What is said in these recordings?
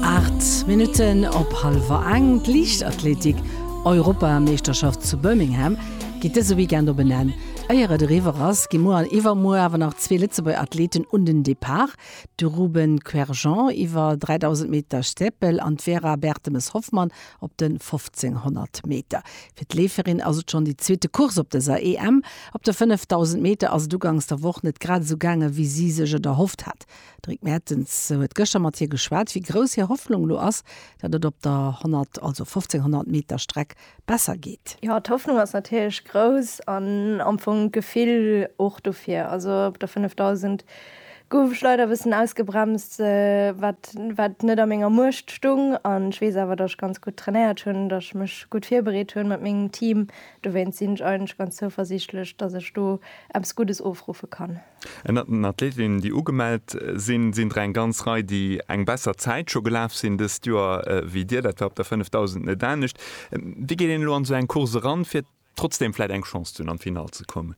Aacht Minutten op hallwer eng. D'Liichtathletik Europameeschterschaft zu Birmingham geet dëse Weekend op en Enn. Éier et eriwwer ass, gi muer an iwwermuer awer nach zwee Lëtzebuerger Athleten un den Depart, de Ruben Querjean iwwer 3.000 Meter Steeple an d'Vera Bertemes-Hoffmann op de 1.500 Meter. Fir d'Leeferin ass et schonn déi zweete Course op dëser EM. Op de 5.000 Meter ass et ugangs der Woch net grad esou gaange wéi si sech et erhofft hat. D'Rick Mertens huet gëschter mat hir geschwat, wéi grouss hir Hoffnung elo ass, datt et op der 100, also 1500 Meter Streck besser geet. Jo, d'Hoffnung ass natierlech grouss an am Fong d'Gefill och dofir. Also op der 5000 gouf ech leider e bëssen ausgebremst, wat wat net a menger Muecht stoung. An ech weess awer, datt ech ganz gutt trainéiert hunn, datt ech mech gutt virbereet hunn mat mengem Team. Dowéinst sinn ech eigentlech ganz zouversiichtlech, datt ech do eppes Guddes ofruffe kann. Ënnert den Athletinnen, déi ugemellt sinn, sinn der eng ganz Rei, déi eng besser Zäit scho gelaf sinn dëst Joer wéi Dir. Dat war op der 5000 net anescht. Wéi geet een elo an esou eng Course eran, fir trotzdeem vläit eng Chance ze hunn, an d'Finall ze kommen?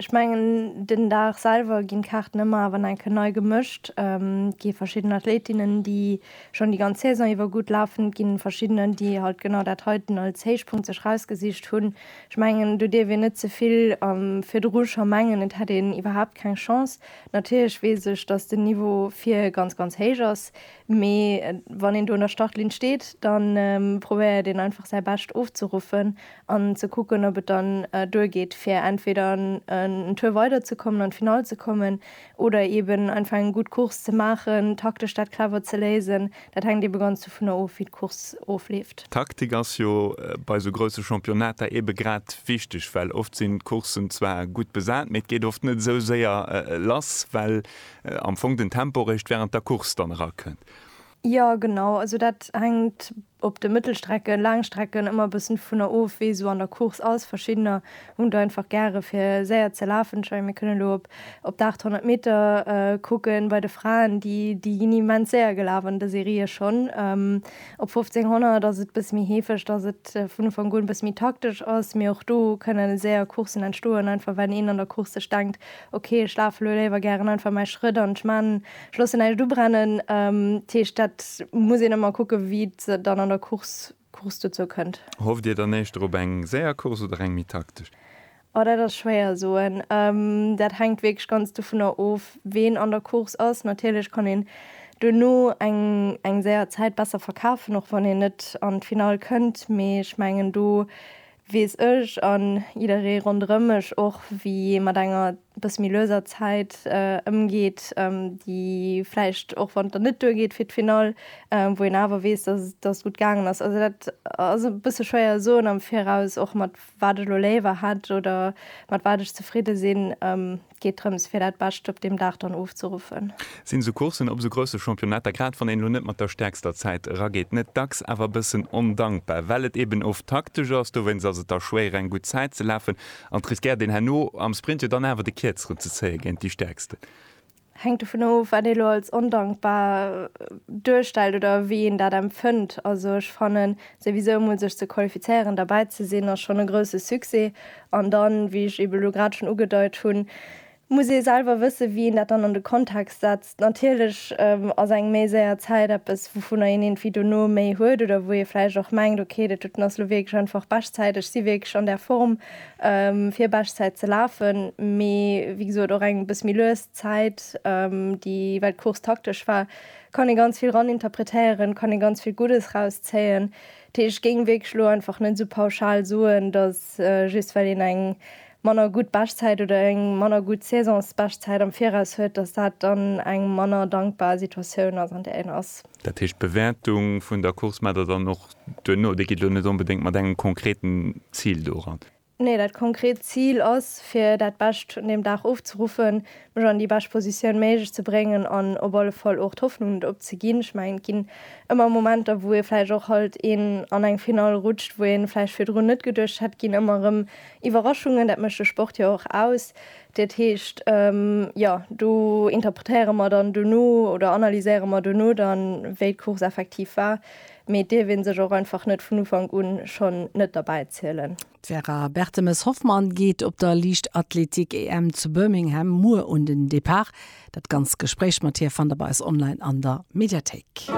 Ech mengen, den Dag selwer ginn d'Kaarten ëmmer awer nach enke nei gemëscht. Et gi verschidden Athletinnen, déi schonn déi ganz Saison iwwer gutt lafen. Et gi verschiddener, déi halt genau dat heiten als Héichpunkt sech erausgesicht hunn. Ech mengen, do dierf een net ze vill virdru scho mengen, et hätt een iwwerhaapt keng Chance. Natierlech weess ech, datt den Niveau vir ganz, ganz héich ass, mee wann een do un der Startlinn steet, da probéiert een einfach säi Bescht ofzeruffen an ze kucken, ob et dann duergeet, fir entweder en Tour weiderzekommen, an d'Finall ze kommen, Oder eben einfach eng gutt Course ze maachen, taktesch dat clever ze léisen. Dat hänkt ebe ganz dovunner of, wéi d'Course ofleeft. D'Taktik ass jo bei esou grousse Championnater ebe grad wichteg, well oft sinn d'Courssen zwar gutt besat, mee et geet oft net esou séier lass, well am Fong den Tempo réischt wärend der Course dann erakënnt. Jo genau, also dat hänkt op de Mëttelstrecken, Laangstrecken ëmmer e bëssen dovunner of wee esou an der Course ass. Verschiddener hunn et einfach gäre fir séier ze lafen. Ech mengen mir kënnen elo op op de 800 Meter kucken bei de Fraen, déi déi ginn immens séier gelaf an der Serie schonn. Op 1500 ass et e bësse méi heefeg, datt et vun Ufank un e bësse méi taktesch ass, mee och do kënnen séier Courssen entstoen, einfach well een an der Course sech denkt, ok ech lafe elo léiwer gären einfach mäi Schrëtt an ech man Schloss näischt ubrennen. Ähm, Teescht dat muss een ëmmer kucke wéi et dann an der Course Course dozou kënnt. Hofft Dir dann éischter op eng séier Course oder eng méi taktesch? Oh, dat ass schwéier soen. Ähm, dat hänkt wierklech ganz dovunner of, ween an der Course ass. Natierlech kann een duerno eng eng séier Zäit besser verkafen, och wann een net an d'Finall kënnt. Mee ech mengen do weess ech an jidderee ronderëm mech och, wéi ee mat enger bësse méi lueser Zäit ëmgeet, déi vläicht, och wann et dann net duergeet fir d'Finall, wou een awer weess, dass et, dass et gutt gaangen ass. Also dat ass e bësse schwéier soen am Viraus, och mat wat ech elo léiwer hätt oder mat wat ech zefridde sinn. Et geet drëms, fir dat Bescht op deem Dag dann ofzeruffen. Sinn esou Courssen op esou grousse Championnetter, grad wann een elo net mat der stäerkster Zäit erageet, net dacks awer e bëssen ondankbar, well et eeben oft taktesch ass? Dowéinst ass et da schwéier, eng gutt Zäit ze lafen, An et riskéiert een herno am Sprint jo dann awer de Kierzeren ze zéien géint déi Stäerksten. Hänkt dovun of, wat ee lo als ondankbar duerstellt oder wéi een dat empfënnt. Also ech fannen, souwisou emol sech ze qualifizéieren, derbäi ze sinn, ass schonn e grousse Succès. An dann, wéi ech ebe lo grad schonn ugedeit hunn, Muss ee selwer wëssen, wéi een dat dann an de Kontext setzt. Natierlech ass eng méi séier Zäit eppes, wouvunner een iergendwéi dono méi huet oder wou ee vläicht och mengt, okay, dat doten ass elo wierklech einfach Beschtzäit, ech si wierklech an där Form, fir Beschtzäit ze lafen. Mee wéi gesot, och eng e bësse méi lues Zäit, déi, well d'Course taktesch war, kann ee ganz vill raninterpretéieren, kann ee ganz vill Guddes rauszéien. Dat heescht, ech géing wierklech elo einfach net esou pauschal soen, datt just well een eng manner gutt Beschtzäit oder eng manner gutt Saisonsbeschtzäit am Viraus huet, datt dat dann eng manner dankbar Situatioun ass, an där een ass. Dat heescht, d'Bewäertung vun der Course maacht Der dann och duerno, déi geet elo net onbedéngt mat engem konkreten Zil do eran? Nee, dat konkret Zil ass, fir dat Bescht un deem Dag ofzeruffen, mech an déi bescht Positioun méiglech ze bréngen an op alle Fall och d'Hoffnung net opzeginn. Ech mengen, et ginn ëmmer Momenter, wou ee vläicht och halt een an eng Finall rutscht, wou ee vläicht virdrun net geduecht hätt, ginn ëmmer erëm Iwwerraschungen, dat mécht de Sport jo och aus. Dat heescht, jo, do interpretéiere mer dann duerno oder analyséiere mer duerno dann, wéi d'Course effektiv war. Mee et dierf ee sech och einfach net vun Ufank un schonn net derbäi zielen. D'Vera Bertemes-Hoffmann geet op der Liichtathletik-EM zu Birmingham muer un den Depart. Dat ganzt Gespréich mat hir fannt der bei eis online an der Mediathéik.